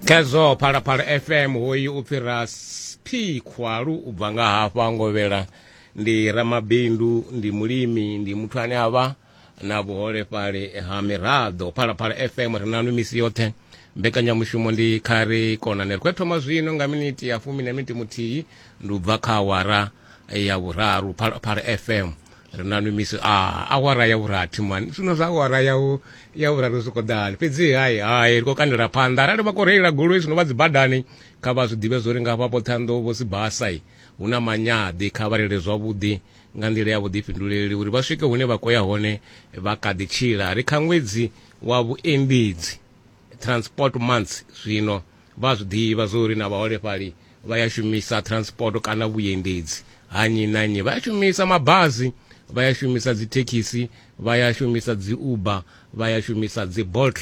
khezwo phalaphala fm hoyu u fhira p khwalu u bva nga hafha ngovhela ndi ramabindu ndi mulimi ndi muthu ane a vha na vhuholefhali ha miraḓo phalaphala fm ri nanu misi yoṱhe mbekanyamushumo ndi kha ri konane ri khou thoma zwino nga miniti ya fumi na miniti muthihi ndi u bva kha awara ya vhuraru phala fm ri na nwi misi a awara ya vhurathi mani zwino zwa awara ya ya vhuraru zwi khou ḓani fhedzi hai hai ri khou kandela phanḓa arali vha khou reila goloi zwino vha dzi badani kha vha zwi ḓivhe zwo ri nga hafha poṱhanḓo vho si basai hu na manyaḓi kha vha reile zwavhuḓi nga nḓila ya vhuḓifhinduleli uri vha swike hune vha khou ya hone vha kha ḓi tshila ri kha ṅwedzi wa vhuendedzi transport months zwino vha zwi ḓivha zwo uri na vhaholefhali vha ya shumisa transport kana vhuendedzi ha nnyi na nnyi vha ya shumisa mabazi vha ya shumisa dzithekhisi vha ya shumisa dzi uber vha ya shumisa dzi bolt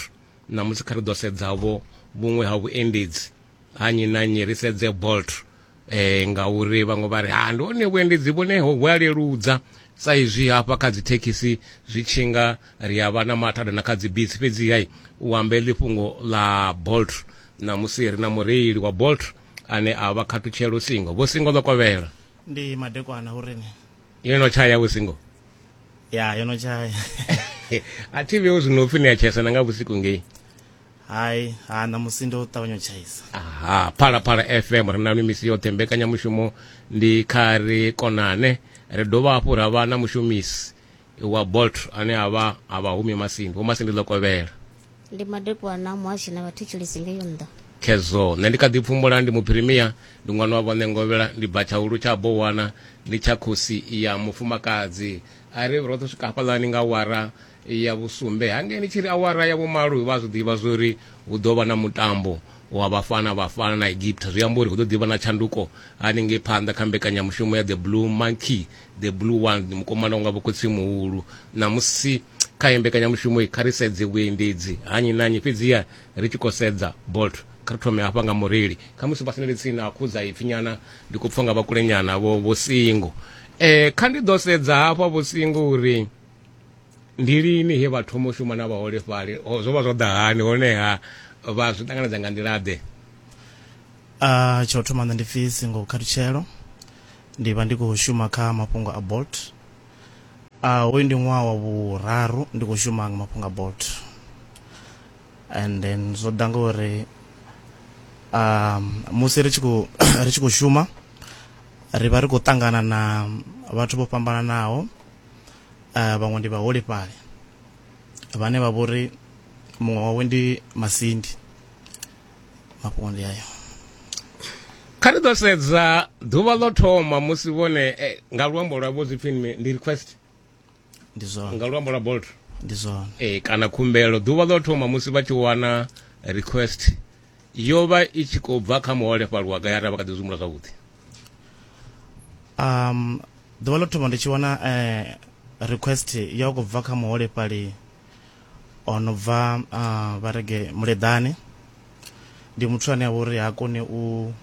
na musi kha ri ḓo sedzavho vhuṅwe ha vhuendedzi ha nnyi na nnyi ri sedze bolt eh ngauri vhaṅwe vha ri ha ndi hone vhuendedzi vhune ho vhu a leludza sa izwi hafha kha dzithekhisi zwi tshi nga ri a vha na mathada na kha dzibisi fhedzi hai u ambe ḽifhungo ḽa bolt namusi ri na mureili wa bolt ane a vha khathutshelo singo vho singo ḽo kovhela ndi madekwana hu rini yo no tshaya vho singo ya yo no tshaya a thi vheo zwino upfi ni a tshayisana nga vhusiku ngei hai ha ṋamusi ndo ṱavhanya u tshaisa aha phalaphala fm ri nanu misi yoṱhe mbekanyamushumo ndi kha ri konane ri dovha hafhu ra vha na mushumisi wa bolt ane a vha a vha humi masindi vho masindi ḽo kovhela ndi madekwana muhashi na vhathetshelisi ngeyo nnḓa khezwo nṋe ndi kha ḓi pfumbula ndi muphirimia ndi ṅwana wa vhone ngovhela ndi bva tshaulu tsha bowana ndi tsha khosi ya mufumakadzi a ri roṱhe swika hafhaḽani nga wara ya vhusumbe hangeni tshi ri awara ya vhumalo vha zwi ḓivha zwo ri hu ḓo vha na mutambo wa vhafana vhafana na egipta zwi amba uri hu ḓo ḓivha na tshanduko haningei phanḓa kha mbekanyamushumo ya the blue monkey the blue one mukomana unga vhokhotsi muhulu ṋamusi kha ye mbekanyamushumo i kha ri sedze vhuendedzi hanyi na nyi fhedziha ri tshi khou sedza bolt kha ri thome hafha nga mureili kha musi vhasinele tsini a khudza ipfi nyana ndi khou pfha nga vhakulenyana vho vho singo um kha ndi ḓo sedza hafha vho singo uri ndi lini he vha thoma u shuma na vhaholefhali zwo vha zwo ḓa hani honeha vha zwi ṱanganedza nga nḓila ḓe uh, tsha u thoma nṋe ndi pfi singo kharutshelo ndi vha ndi khou shuma kha mafhungo a bolt uh, hoyu ndi ṅwaha wa vhuraru ndi khou shuma nga mafhungo a bolt and then zwo ḓa ngauri um musi ri tshi khou ri tshi khou shuma ri vha ri khou ṱangana na vhathu vho fhambananaho uh, vhaṅwe ndi vhaholefhali vhane vha vhori muṅwe wawe ndi masindi mafhungo ndi ayo kha ri ḓo sedza ḓuvha ḽo thoma musi vhone eh, nga luambo lwa vho zwipfi ndi request ndi zwone nga luambo lwa bolt ndi zwone eh kana khumbelo ḓuvha ḽo thoma musi vha tshi wana request yo vha i tshi khou bva kha muholefhali wa gai arali vha kha ḓi zwimula zwavhuḓi um ḓuvha ḽo thoma ndi tshi wana eh, request ya u khou bva kha muholefhali o no bva ah, vha rege muleḓane ndi muthu ane a vha uri ha koni u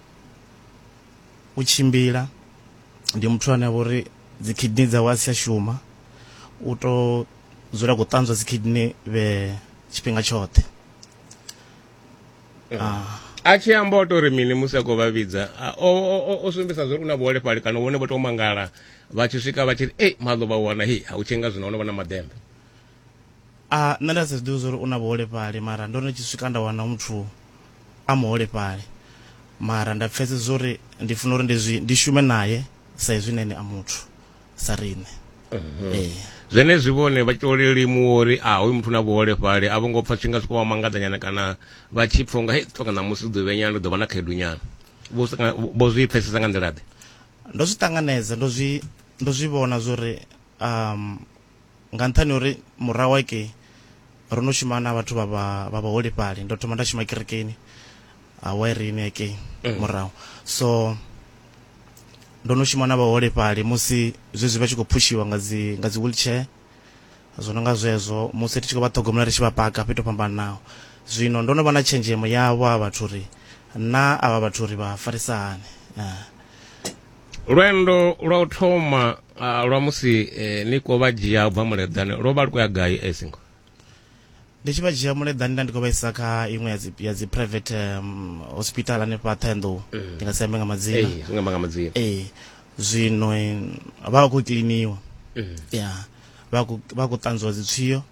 u tshimbila ndi muthu ane a vha uri dzi kidney dzawe a si tsha shuma u to dzula khou ṱanzwa dzi kidney vhe tshifhinga tshoṱhe a tshi amba o tori mini musi a khou vha vhidza a- o- o- o- o sumbedzisa zwa uri u na vhuholefhali kana vhone vho tou mangala vha tshi swika vha tshi ri ei maḓo vha wana hei ha u tshinga zwino ono vha na maḓembe a nṋe nda si zwiḓivhi zwa uri u na vhuholefhali mara ndo no tshi swika nda wana muthu a muholefhali mara nda pfesesa uri ndi funa uri ndi zwi ndi shume naye sa izwi na ene a muthu sa riṋe ee zwenezwi vhone vha tyo lelimuwa uri a hoyu muthu na vhuholefhali a vho ngo pfa tshi nga soko vha mangadanyana kana vha tshi pfa unga hei ṱhoga ṋamusi u ḓo vhenyana u ḓo vha na khaedu nyana vho sa nga- vho zwi pfesesa nga nḓila ḓe ndo zwi ṱanganedza ndo zwi ndo zwi vhona zwori um nga nṱhani uri murahu ake ro no shuma na vhathu vha vhaholefhali ndo thoma nda shuma kerekeni awairini ake mm. murahu so ndo no shuma na vhaholefhali musi zwezwi vha tshi khou phushiwa nga dzi nga dzi wheelchair zwo no nga zwezwo musi ri tshi khou vha ṱhogomela ri tshi vha paka fhethu fhambananaho zwino ndo no vha na tshenzhemo yavho a vhathu uri na avha vhathu uri vha farisa hani lwendo lwa u thoma ah, lwa musi eh, ni khou vha dzhia u bva muleḓane lwo vha lu khou ya gai eh, singo ndi tshi vha dzhia muleḓani nda ndi khou vha isa kha iṅwe ya dzi- ya dzi private um, hospital hanefha ṱhenḓou ndi nga si ambe nga madzina Eh, zwi nga amba nga madzina ee zwino eh, vha vha khou kiliniwa Mm. ya vha khou- vha khou ṱanzwiwa dzitswio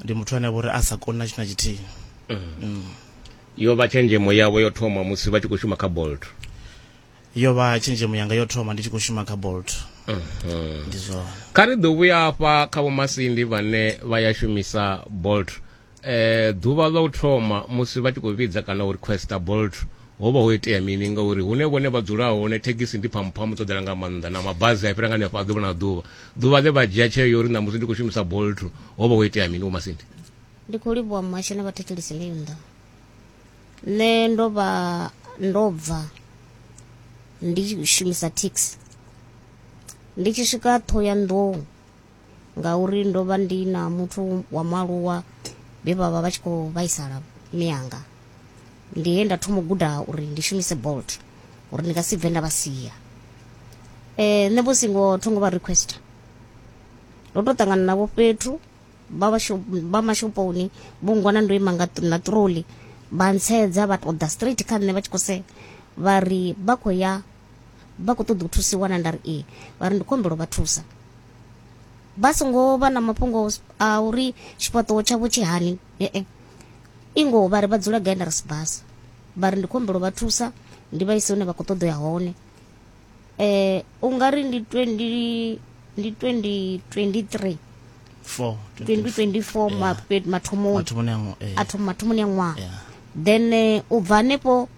ndi muthu ane a vha uri a sa koni na tshithu na tshithihi yo vha tshenzhemo yavho yo thoma musi vha tshi khou shuma kha bolt yo vha tshenzhemo yanga yo thoma ndi tshi khou shuma kha bolt mhm. ndi zwone kha ri ḓo vhuya afha kha vhomasindi vhane vha ya shumisa bolt eh ḓuvha ḽa u thoma musi vha tshi khou vhidza kana u requesta bolt ho vha ho itea mini ngauri hune vhone vha dzula hone thekhisi ndi phamphamu dzo ḓela nga maanḓa na mabazi a fhira nga nefha a ḓuvha na ḓuvha ḓuvha ḽe vha dzhia tsheo uri ṋamusi ndi khou shumisa bolt ho vha ho itea mini vhomasindi ndi khou livhuwa muhasho na vhathetshelisi leyo nḓa nṋe ndo vha ndo bva ndi tshi shumisa thekhisi ndi tshi swika Thohoyandou ngauri ndo vha ndi na muthu wa mualuwa vhe vha vha vha tshi khou vhaisala miyanga ndi he nda thoma u guda uri ndi shumise bolt uri ndi nga si bve nda vha sia um nṋe vho singo tho ngo vha requester ndo to ṱangana navho fhethu vha vha mashoponi vho ngwana ndo ima nga na troli vha ntshedza vha ṱoḓa straight kha nṋe vha tshi khou sea vha ri vha khou ya vha khou ṱoḓa u thusiwa na nda ri ee vha ri ndi khou humbela vha thusa vha songo vha na mafhungo a uri tshifhaṱuwo tshavho tshi hani ee i ngoho vha ri vha dzula gai nda ri sibasa vha ri ndi khou humbela vha thusa ndi vha ise hune vha khou ṱoḓa ya hone eh u nga ri ndi 20 ndi 2023 four twenty- 2024 Yeah. mape- mathomoni mathomoni a ngo- eh, a thoma mathomoni a ṅwaha yeah. then eh, u bva hanefho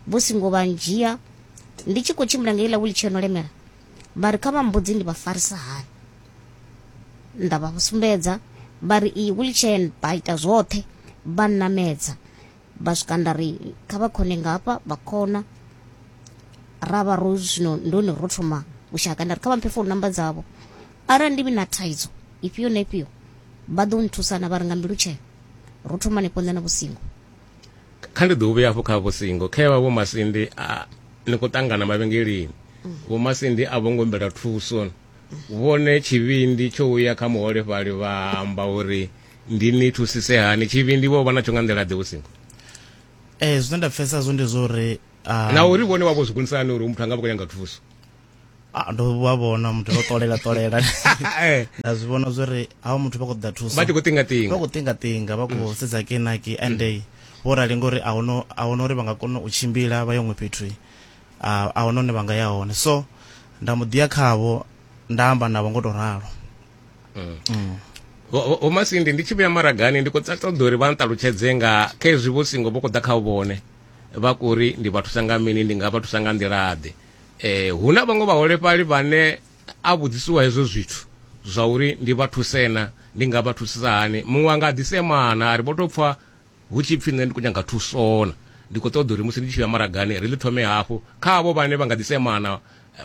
vho singo vha ndzhia ndi tshi khou tshimbila ngeiḽa wheelchair no lemela vha ri kha vha mbudzi ndi vha farisa hani nda vha sumbedza vha ri iyi wheelchair vha ita zwoṱhe vha nnamedza vha swika nda ri kha vha khone nga hafha vha khona ra vha ro zwino ndo ne ro thoma u shaka nda ri kha vha mphe founu namba dzavho arali ndi vhi na thaidzo ifhio na ifhio vha ḓo nthusa na vha ri nga mbilu tshee ro thoma hanefho nṋe na vhusingo kha ndi ḓo vhuya hafho kha vhusingo kha vha vho masindi a ni khou ṱangana mavhengeleni vho masindi a vho ngo humbela thuso vhone tshivhindi tsho uya kha muholefhali vha amba uri ndi ni thusise hani tshivhindi vho vha natsho nga nḓila ḓe vhusingo eh zwine nda pfesa zwo ndi zwo ri ah, na uri vhone wavho zwikonisa hani uri muthu anga vha khou nyanga thuso ah, ndo vha vhona muthu vha ṱolela ṱolela eh. nda zwi vhona zwo ri hawa muthu vha khou ḓa thuso vha tshi khou tingatinga vha khou tingatinga vha khou sedza kenaki and mm. vho rali ngori a hone a hone uri vha nga kona u tshimbila vha ye huṅwe fhethu ah, a hone hone vha nga ya hone so nda mu ḓiya khavho nda amba navho ngo tou ralo mm. Mm. vho masindi ndi tshi vhuya maragani ndi khou ṱoḓa uri vha nṱalutshedze nga kha ezwi vho singo vho khou ḓa kha vhone vha kuri ndi vha thusa nga mini ndi nga vha thusa nga nḓilaḓe eh hu na vhaṅwe vhaholefhali vhane a vhudzisiwa hezwo zwithu zwa uri ndi vha thusena ndi nga vha thusisa hani muṅwe a nga ḓisemana a ri vho tou pfha hu tshi pfhi nṋe ndi khou nyanga thusona ndi khou ṱoḓa uri musi ndi tshi ya maragani ri ḽi thome hafhu kha avho vhane vha nga ḓisemana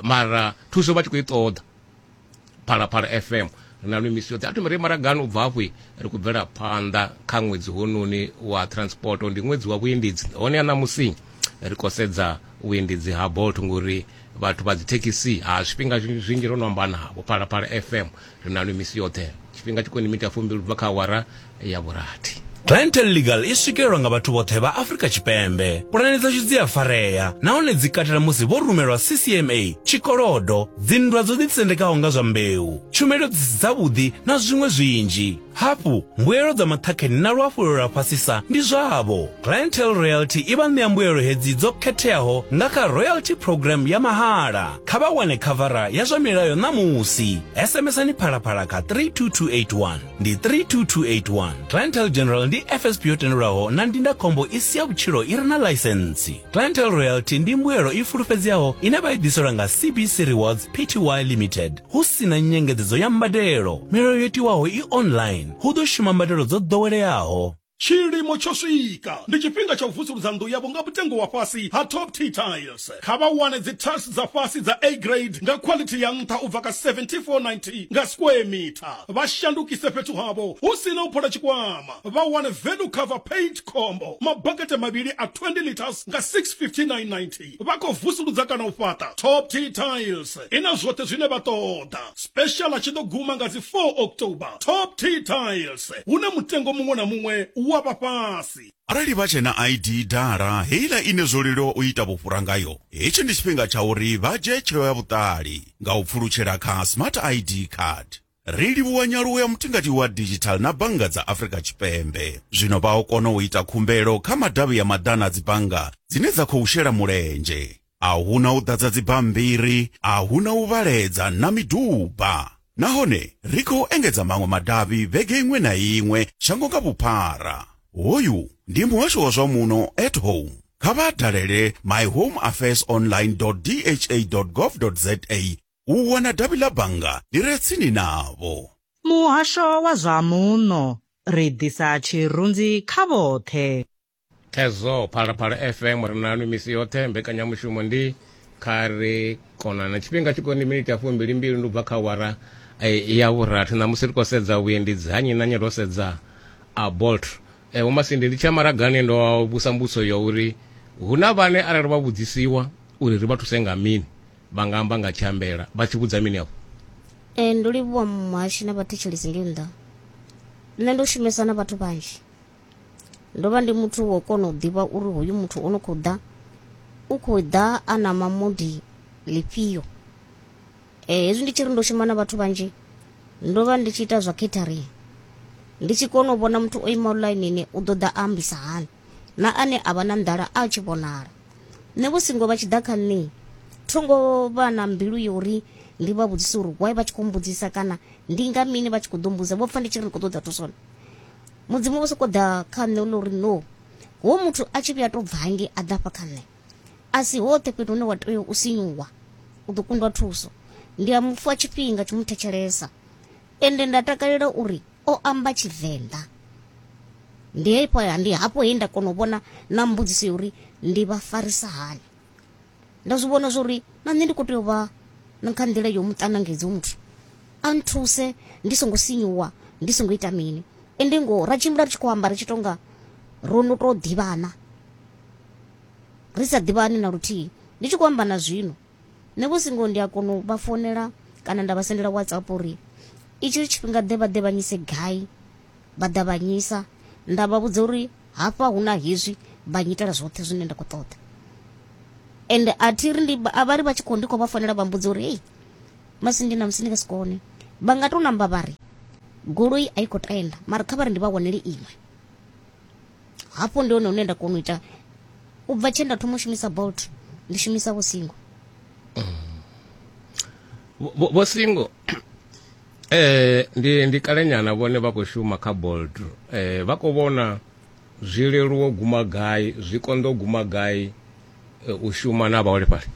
mara thuso vha tshi khou i ṱoḓa phalaphala fm ri na misi yoṱhe a thome ri maragani u bva hafhu ri khou bvela phanḓa kha ṅwedzi hononi wa transport ndi ṅwedzi wa vhuendedzi hone a ṋamusi ri khou sedza vhuendedzi ha bolt ngori vhathu vha dzithekhisi ha zwifhinga zwinzhi ro no amba navho phalaphala fm ri na misi yoṱhe tshifhinga tshi khou ni mita fumbili ubva kha awara ya vhurathi. Clientele Legal i swikelelwa nga vhathu vhoṱhe vha Afrika Tshipembe. Pulane dzashu dzi a farea nahone dzi katela musi vho rumelwa CCMA, tshikolodo, dzinndwa dzo ḓitsendekaho nga zwa mbeu, tshumelo dzi si dzavhuḓi na zwiṅwe zwinzhi. Hafhu, mbuelo dza maṱhakheni na luhafhulelo lwa fhasisa ndi zwavho. Clientele Royalty i vha ṋea mbuelo hedzi dzo khetheaho nga kha Royalty Programme ya mahala. Kha vha wane khavara ya zwa milayo ṋamusi. SMSani Phalaphala kha 32281. ndi 32281. Clientele General ndi FSP yo tendelwaho na ndindakhombo i si ya vhutshilo i re na ḽaisentsi. Clientele Royalty ndi mbuelo i fulufhedzeaho ine vha i ḓiselwa nga CBC Rewards Pty Limited hu si na nyengedzedzo ya mbadelo. Milayo yo tiwaho i online. Hu ḓo shuma mbadelo dzo ḓoweleaho. Tshilimo tsho swika. Ndi tshifhinga tsha u vusuludza nnḓu yavho nga mutengo wa fhasi ha Top T Tiles. Kha vha wane dzi tiles dza fhasi dza A Grade nga khwaḽithi ya nṱha u bva kha R74.90 nga square metre. Vha shandukise fhethu havho hu si na u phola tshikwama. Vha wane Value Cover Paint Combo, mabakete mavhili a 20 litres nga R659.90. Vha khou vusuludza kana u fhaṱa Top Tea Tiles. I na zwoṱhe zwine vha ṱoḓa. Special tshi ḓo guma nga dzi 4 October. Top Tea Tiles, hune mutengo muṅwe na muṅwe u wa vha fhasi. Arali vha tshe na ID dala, heiḽa ine zwo leluwa u ita vhufhura ngayo, hetshi ndi tshifhinga tsha uri vha dzhie tsheo ya vhuṱali nga u pfulutshela kha Smart ID Card. Ri livhuwa nyaluwo ya mutingati wa digital na bannga dza Afrika Tshipembe. Zwino vha o kona u ita khumbelo kha madavhi ya maḓana a dzibannga dzine dza khou shela mulenzhe. A hu na u ḓadza dzibammbiri, a hu na u vhaledza na miduba. Nahone ri khou engedza maṅwe madavhi vhege iṅwe na iṅwe shango nga vhuphara. Hoyu ndi muhasho wa zwa muno at home. Kha vha dalele myhomeaffairsonline.dha.gov.za u wana davhi ḽa bannga ḽi re tsini navho. Muhasho wa zwa Muno, Ri ḓisa tshirunzi kha vhoṱhe. Thedzo, Phalaphala FM ri naanwi misi yoṱhe. Mbekanyamushumo ndi Kha Ri Konane. Tshifhinga tshi khou ndi miniti ya fumbili-mbili, ndi u bva kha awara ya vhurathi. Ṋamusi ri khou sedza vhuendedzi ha nnyi na nnyi ro sedza a Bolt. Vho Masindi, ndi tshi ya maragani ndo vhusa mbudziso ya uri hu na vhane arali vha vhudzisiwa uri ri vha thuse nga mini, vha nga amba nga tshiambela vha tshi vhudza mini afho ee ndo livhuwa muhashi na vhathetshelisi ndi nnḓa nṋe ndo shumesa na vhathu vhanzhi ndo vha ndi muthu wo kona u ḓivha uri hoyu muthu o no khou ḓa u khou ḓa a na mamudi lifhio eh, hezwi ndi tshi ri ndo shuma na vhathu vhanzhi ndo vha ndi tshi ita zwa catering ndi tshi kona u vhona muthu o imaho ḽainini u ḓo ḓa ambisa hani na ane a vha na nḓala a tshi vhonala nṋe vho singo vha tshi ḓa kha nṋe thongo vha na mbilu ya uri ndi vha vhudzise uri why vha tshi khou mbudzisa kana ndi nga mini vha tshi khou ḓo mbuza vho pfa ndi tshi ri khou ṱoḓa thusona mudzimu vho sokou ḓa kha nṋe ḽa uri no ho muthu a tshi vhuya to bvange a ḓa fha kha nṋe a si hoṱhe fhethu hune wa tea u sinyuwa u ḓo kundwa thuso ndi a mu fha tshifhinga tsho mu thetshelesa Ende nda takalela uri o amba Tshivenḓa. Ndi hafho ndi hafho he nda kona u vhona na mbudziso ya uri ndi vha farisa hani. Nda zwi vhona zwa uri na nṋe ndi khou tea u vha na kha nḓila yo mu ṱanangedza hoyu muthu. A nthuse ndi songo sinyuwa, ndi songo ita mini. Ende ngoho ra tshimbila ri tshi khou amba ri tshi tou nga ro no tou ḓivhana, ri sa ḓivhani na luthihi. Ndi tshi khou amba na zwino nṋe vho singo ndi a kona u vha founela kana nda vha sendela whatsapp uri itshi tshifhinga ḓe vha ḓe vha nyise gai vha ḓa vha nyisa nda vha vhudza uri hafha hu na hezwi vha nyitela zwoṱhe zwine nda khou ṱoḓa ende a thi ri ndi a vha ri vha tshi khou ndi khou vha founela vha mbudza uri hei masindi na musi ndi nga si kone vha nga tou namba vha ri goloi a i khou tenda mara kha vha ri ndi vha wanele iṅwe hafho ndi hone hune nda kona u ita u bva tshe nda thoma u shumisa bolt ndi shumisa vho singo Vho- vho vho singo eh ndi ndi kalenyana vhone vha khou shuma kha bolt eh vha khou vhona zwi leluwo guma gai zwi konḓo guma gai eh, u shuma na vhaholefhali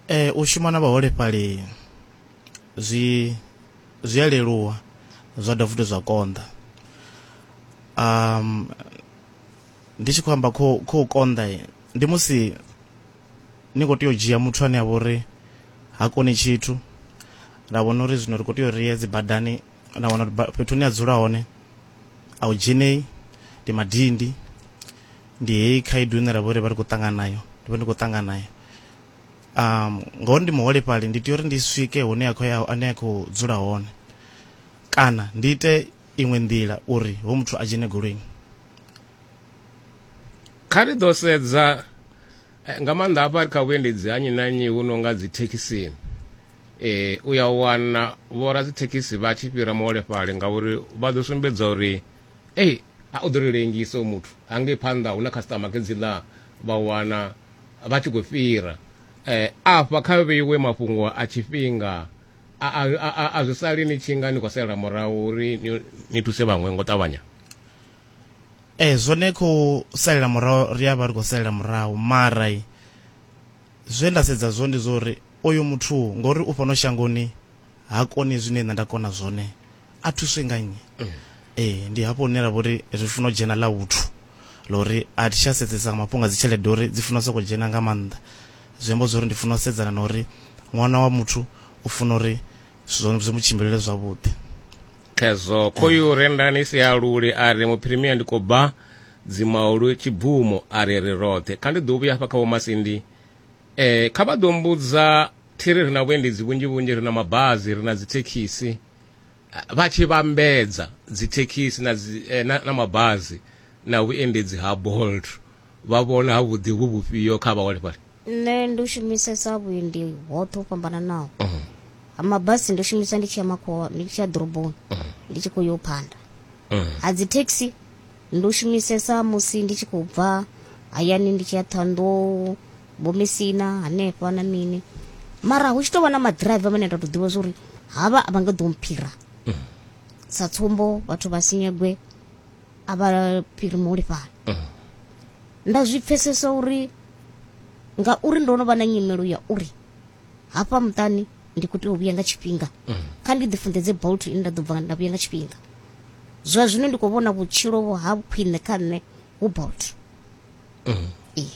Ee, u shuma na vhaholefhali zwi zwi a leluwa zwa dovha futhi zwa konḓa um ndi tshi khou amba kho khou konḓa ndi musi ni khou tea u dzhia muthu ane a vha uri ha koni tshithu ra vhona uri zwino ri khou tea u rie dzi badani na wana uri fhethu hune a dzula hone a u dzhenei ndi madindi ndi heyi khaedu ine ra vha uri vha ri khou ṱangana nayo ndi vha ndi khou ṱangana nayo um ngoho ndi muholefhali ndi tea uri ndi swike hune ya khou ya ane ya khou dzula hone kana ndi ite iṅwe nḓila uri ho muthu a dzhene goloini kha ri ḓo sedza eh, nga maanḓa hafha ri kha vhuendedzi ha nnyi na nnyi hu no nga dzithekhisini eh u ya wana vhora dzithekhisi vha tshi fhira muholefhali ngauri vha ḓo sumbedza uri ei a u ḓo ri lengisa u muthu hangei phanḓa hu na customer ke dzi ḽa vha wana vha tshi khou fhira eh, afha kha vheiwe mafhungo a tshifhinga a zwi sali ni tshi nga ni khou sela murahu uri ni thuse vhaṅwe ngo ṱavhanya ee eh, zwone khou salela murahu ri a vha ri khou salela murahu mara zwe nda sedza zwo ndi zwo uri oyo muthu ngori u fhano shangoni ha koni zwine nṋe nda kona zwone a thuswe nga nnyi mm. ee ndi hafho hune ra vha uri ri funa u dzhena ḽa vhuthu ḽa uri a thi tsha sedzesa nga mafhungo a dzi tshelede uri dzi funa u sokou dzhena nga maanḓa zwi amba zwa uri ndi funa u sedzana na uri ṅwana wa muthu u funa uri zwi mu tshimbilele zwavhuḓi khezwo khoyu eh. rendani si ya luli a ri muphirimia ndi khou bva dzimaulu tshibvumo a ri ri roṱhe kha ndi ḓo vhuya hafha kha vhomasindi um kha vha ḓo mbudza thiri ri na vhuendedzi vhunzhi vhunzhi ri na mabazi ri na dzithekhisi vha tshi vhambedza dzithekhisi na, dzi, eh, na, na mabazi na vhuendedzi ha bolt vha vhona ha vhuḓi vhu vhufhio kha vhaholefhali nṋe ndi u shumisesa vhuendi hoṱhe ho fhambananaho mhm. ha mabasi ndi u shumisa ndi tshi ya makhowa ndi tshi ya ḓoroboni mhm. ndi tshi khou yo phanda mhm. ha dzithekhisi Ndo shumisesa musi ndi tshi khou bva hayani ndi tshi ya Ṱhohoyanḓou, Vho Mesina hanefha na mini. Mara hu tshi tou vha na maḓiraiva vhane nda tou ḓivha zwa uri havha a vha nga ḓo mphira. Sa tsumbo vhathu vha Sinyegwe a vha fhiri muholefhali. Nda zwi pfhesesa uri ngauri ndo no vha na nyimelo ya uri hafha muṱani ndi khou tea u vhuya nga tshifhinga kha ndi ḓi funḓedze bolt ine nda ḓo bva nda vhuya nga tshifhinga zwa zwino ndi khou vhona vhutshilo vho ha khwine kha nṋe hu bolt Ee.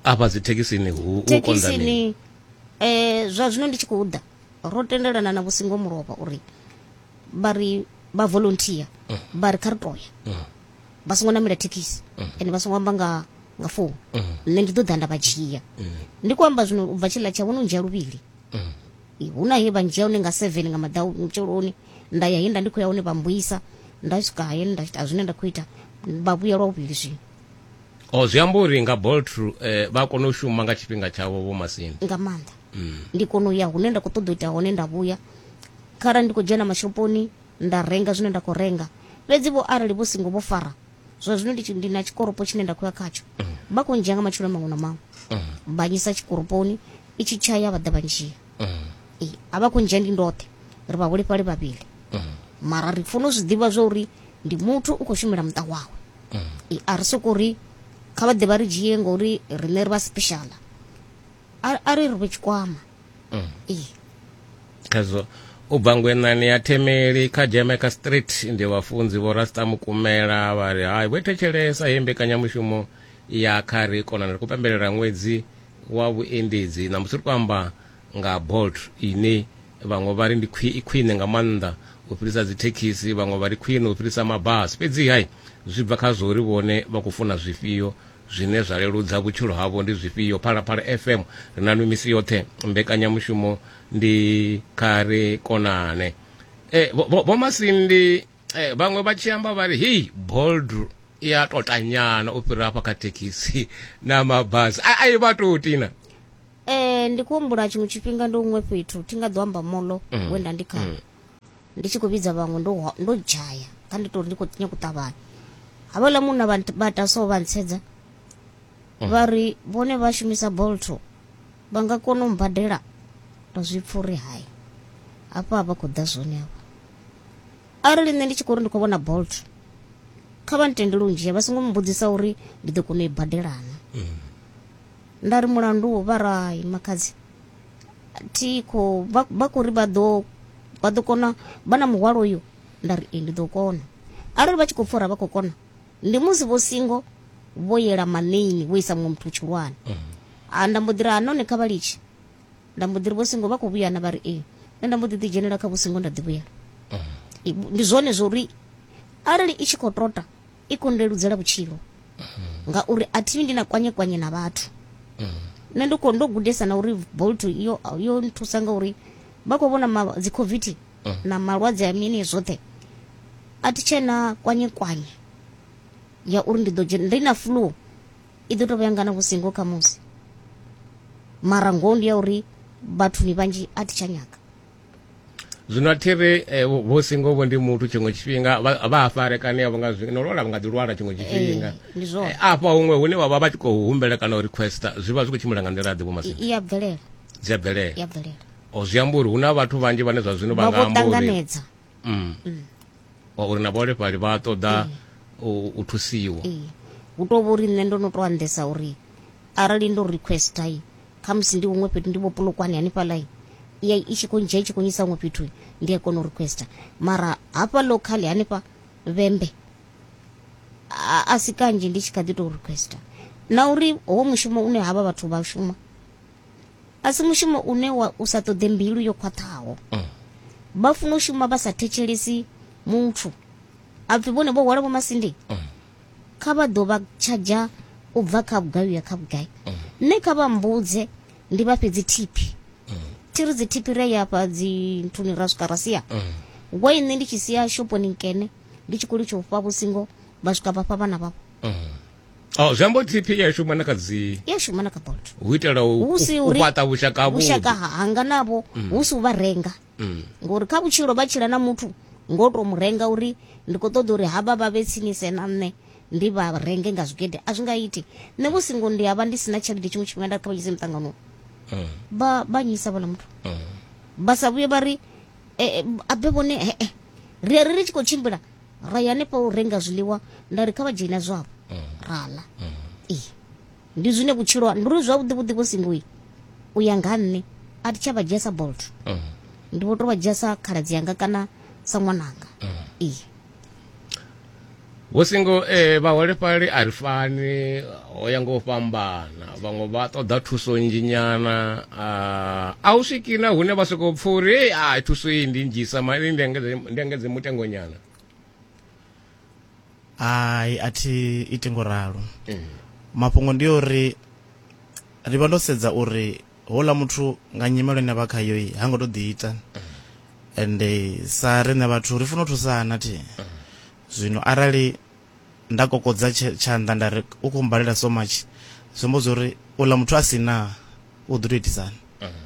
afha dzi thekhisini hu u konḓa mini thekhisini eh, zwa zwino ndi tshi khou ḓa ro tendelana na vhusingo mulovha uri vha ri vha volunteer vha ri kha ri toya vha songo namela thekhisi ende vha songo amba nga nga founu nṋe ndi ḓo ḓa nda vha dzhia ndi khou amba zwino u bva tshiḽa tsha vhono ndzhia luvhili Eh, hu na he vha ndzhia hone nga seven nga madau mutsheloni nda ya he nda ndi khou ya hone vha mbuyisa nda swika he nda ita zwine nda khou ita vha vhuya lwa vhuvhili zwino o zwi amba uri nga bolt eh, vha kona u shuma nga tshifhinga tshavho vho masini nga maanḓa ndi kona u ya hune nda khou ṱoḓa u ita hone nda vhuya kharali ndi khou dzhena mashoponi Nda renga zwine nda khou renga. Fhedzi-vho, arali vho singo vho fara, zwa zwino ndi, ndi na tshikoropo tshine nda khou ya khatsho. Vha khou ndzhia nga matshilo maṅwe na maṅwe. Vha nyisa tshikoroponi, i tshi tshaya vha ḓa vha ndzhia. Ee, a vha khou ndzhia ndi ndoṱhe, ri vhaholefhali vhavhili. Mara ri funa u zwi ḓivha zwa uri ndi muthu u khou shumela muṱa wawe. Ee, a ri sokou ri kha vha ḓe vha ri dzhie ngori riṋe ri vha special. A, a ri ri fhe tshikwama. mm. khazwo u bva ngwenani ya themeli kha jamaica street ndi vhafunzi vho rasta mukumela vha ri hai vho thetshelesa he mbekanyamushumo ya kha ri kona ri khou pembelela ṅwedzi wa vhuendedzi na musi ri khou amba nga bolt ine vhaṅwe vha ri ndi khwine nga maanḓa u fhirisa dzithekhisi vhaṅwe vha ri khwine u fhirisa mabasi fhedzi hai zwi bva kha zwo ri vhone vha khou funa zwifhio Zwine zwa leludza vhutshilo havho ndi zwifhio? Phalaphala FM ri na nwi misi yoṱhe. Mbekanyamushumo ndi kha ri konane. E, vho Masindi e, vhaṅwe vha tshi amba vha ri hei bold i a totanyana u fhira hafha kha thekhisi na mabasi a i vha tou tina um ndi kuhumbula tshiṅwe tshifhinga ndi huṅwe fhethu thi nga ḓo amba molo mm. wenda ndi kha mm. ndi tshi khou vhidza vhaṅwe ndo hwa- ndo dzhaya kha ndi tori ndi khou nyanga u ṱavhanya havhaḽa munna vha nt- vha ta so vha ntsedza vha ri vhone vha shumisa bolto vha nga kona u mbadela nda zwi pfa uri hai hafha vha khou ḓa zwone hafha arali nṋe ndi tshi khou ri ndi khou vhona bolt kha vha ntendele u ndzhia vha songo mbudzisa uri ndi ḓo kona u i badelana nda ri mulandu wo vha ra hai makhadzi thi khou vha vha khou ri vha ḓo vha ḓo kona vha na muhwalo uyu nda ri ee ndi ḓo kona arali vha tshi khou pfha uri a vha khou kona ndi musi vho singo vho yela maneini vho isa muṅwe muthu tshihulwane Ah, nda mbo ḓi ri ha none kha vha litshe nda mbo ḓi ri vho singo vha khou vhuya na vha ri ee nṋe nda mbo ḓi ḓi dzhenela kha vho singo nda ḓi vhuyela I- ndi zwone zwo uri arali i tshi khou tota i khou ndeludzela vhutshilo ngauri a thi ndi na kwanye kwanye na vhathu nṋe ndo ndo gudesa na uri bolt yo yo nthusa ngauri vha khou vhona dzi covid na malwadze a mini zwoṱhe a thi tshena kwanye kwanye ya uri ndi ḓo dzhena ndi na flu i ḓo tou vha yangana vhusingo kha musi mara ngoho ndi ya uri vhathuni vhanzhi a thi tsha nyaga zwino a thi ri eh, vho singo vho ndi muthu tshiṅwe tshifhinga vha a farekane avho nga zwino lwala vha nga ḓi lwala tshiṅwe tshifhinga eh, eh, afha huṅwe hune vha vha vha tshi khou humbela kana u requesta zwi vha zwi khou tshimbila nga nḓila ḓe vhomasini iya bvelela dzi a bvelela o zwi amba uri hu na vhathu vhanzhi vhane zwa zwino vha nga amba uri mm. mm. uri na vhaholefhali vha ṱoḓa mm. u thusiwa hu tou vha uri nṋe ndo no tou andesa uri arali ndo requesta kha musi ndi huṅwe fhethu ndi vho pulukwane hanefhaḽa ya i tshi khou ndzhia i tshi khou nyisa huṅwe fhethu ndi a kona u requesta mara hafha local hanefha vhembe a si kanzhi ndi tshi kha ḓi tou requesta na uri ho mushumo une havha vhathu vha shuma a si mushumo une wa u sa ṱoḓe mbilu yo khwaṱhaho vha funa u shuma vha sa thetshelesi muthu a pfi vhone vho hwala vho masindi kha vha ḓo vha tshadzha u bva kha vhugai uya kha vhugai nṋe kha vha mbudze ndi vha fhedzi thiphi thi ri dzi thiphi ri a ya fha dzi nthuni ra swika ra sia wa nṋe ndi tshi sia shoponi nkene ndi tshi khou litsha u fha vhusingo vha swika vha fha vhana vhavho Oh, zwi amba uri tp ya shuma na kha dzi i a shuma na kha bolt u itela u Hu si u- u uri- fhaṱa vhushaka havhuḓi. vhushaka ha- hanga navho Mm. hu si u vha renga Mm. ngori kha vhutshilo vha tshila na muthu ngo to mu renga uri ndi khou ṱoḓa uri havha vha vhe tsinise na nṋe ndi vha renge nga zwigede a zwi nga iti nṋe vho singo ndi a vha ndi si na tshelede tshiṅwe tshifhinga nda ri kha vha dzhise muṱanganoni Mm. vha vha nyisa vhala muthu Mm. vha sa vhuye vha ri eh, eh, abe vhone eh, eh, ri ri ri tshi khou tshimbila ra ya hanefho u renga zwiḽiwa nda ri kha vha dzhena zwavho ra ḽa ee ndi zwine vhutshilo ha- ndi uri zwavhuḓi vhuḓi vho singoi u ya nga ha nṋe a thi tsha vha dzhia sa bolt ndi vho to vha dzhia sa khaladzi yanga kana sa ṅwananga ee vho singo eh, vhaholefhali a ri fani ho ya nga u fhambana vhaṅwe vha ṱoḓa thuso nnzhi nyana a u swiki na hune vha sokou pfha uri ei a thuso iyi ndi nnzhisa mani ndi engedze mutengo nyana hai a thi iti ngo ralo mm. mafhungo ndi uri ri vha ndo sedza uri houḽa muthu nga nyimelo ine vha khayo i ha ngo to ḓi ita ende sa riṋe vhathu ri funa u thusana thi zwino arali Nda kokodza tshanḓa nda ri, U khou mmbalela so much, zwi amba zwa uri uḽa muthu a si na u ḓo tou itisani.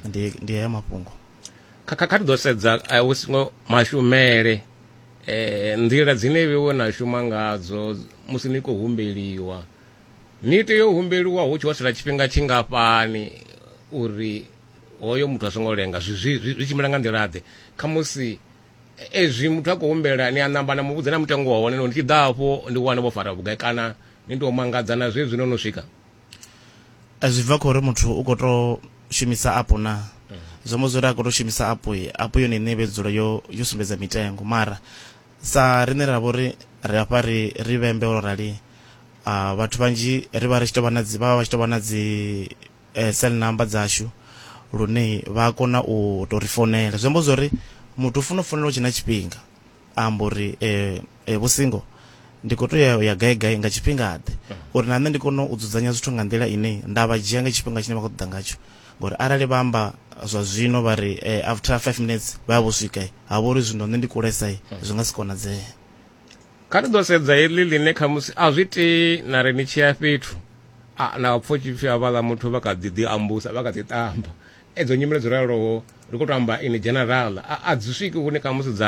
Ndi ndi haya mafhungo. Kha kha kha ri ḓo sedza vhusingo mashumele nḓila dzine vhewe na shuma ngadzo musi ni khou humbeliwa. Ni tea u humbeliwa hu tshi ho sala tshifhinga tshingafhani uri hoyo muthu a songo lenga zwi zwi zwi tshimbila nga nḓila ḓe khamusi ezwi muthu a khou humbela ni a namba na muvhudza na mutengo wa hone no ndi tshi ḓa hafho ndi wane vho fara vhugai kana ni tou mangadza na zwezwi no no swika zwi bva khori muthu u khou tou shumisa apu na mm. zwo mbo zwori a khou tou shumisa apu apu yone ine vhe dzula yo yo sumbedza mitengo mara sa rine ra vhori ri afha ri ri vhembe ro rali uh, vhathu vhanzhi ri vha ri tshi tou vha na dzi vha vha tshi tou vha na dzi cell number dzashu lune vha a kona u to ri founela zwi amba zwori muthu u funa u founela u tshina tshifhinga a amba uri vho singo ndi kho to ya ya gai gai nga tshifhinga ḓe uri na nṋe ndi kone u dzudzanya zwithu nga nḓila ine nda vha dzhia nga tshifhinga tshine vha khou ṱoḓa ngatsho ngori arali vha amba zwa zwino vha ri after 5 minutes vha vho swika ha vhori zwino nṋe ndi kulesa zwi nga si konadzee kha ni ḓo sedza heḽi ḽine khamusi a zwi tei na ri ni tshi ya fhethu na pfo tshipfi havhaḽa muthu vha kha ḓi ḓi ambusa vha kha ḓi tamba edzo nyimele dzo raloho ri khou to amba in general a dzi swiki hune khamusi dza